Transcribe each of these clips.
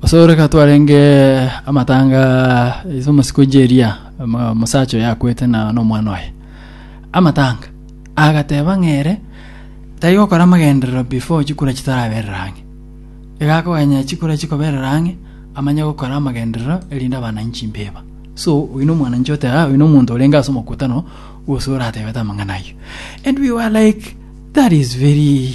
Gose ore ka twarenge amatanga ase omosi kwe Jeria, omo- omosacha oyo akwete na nomwana oye. Amatanga. Agateba ng'a ere tari gokora amagenderero before chikura chitaraberera ang'e. Iga akoganya chikura chikoberera ang'e, amanye gokora amagenderero erinde abananyi chimbeba. So, oyio na omwananchi oteba, "Ah, oyio na omonto orenge ase omokutano, gose oratebete amang'ana ayio. And we were like, that is very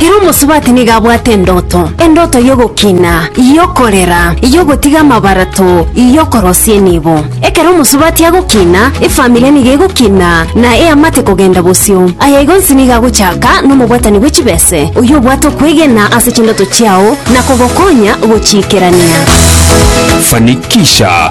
Ere omosubati nigo abwate endoto, endoto y'ogokina, y'okorera, y'ogotiga amabarato, y'okorosia enibo. Ekero omosubati agokina, efamiri nigo egokina na eamate kogenda bosio. Aya igo onsi nigo agochaka nomobwatani bwe chibese, oyio obwate okwegena ase chindoto chiao na kogokonya gochiikerania. Fanikisha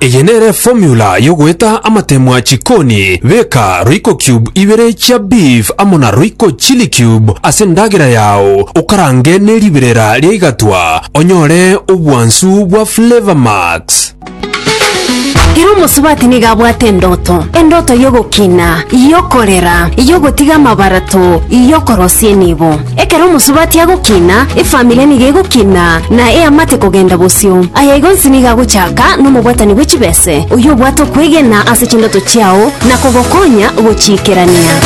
Eye nere formula yogoeta amatemwa chikoni, beka royco cube ibere chia beef amo na royco chili cube ase endagera yao, okarange ne riberera ria igatwa, onyore obwansu bwa flavor max. Ere omosubati nigo abwate endoto, endoto y'ogokina, y'okorera, y'ogotiga amabarato, y'okorosia enibo. Ekero omosubati agokina, efamiri nigo egokina, na eamate kogenda bosio. Aya igo onsi nigo agochaka nomobwatani bwe chibese, oyio obwate okwegena ase chindoto chiao na kogokonya gochiikerania.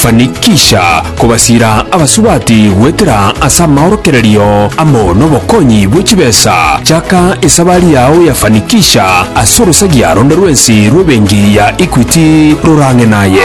Fanikisha kobasiira abasubati goetera ase amaorokererio amo nobokonyi bwe chibesa. Chaka esabari yao ya Fanikisha ase orosagia ronde rwensi rw'ebenki ya Equity rorang'e naye.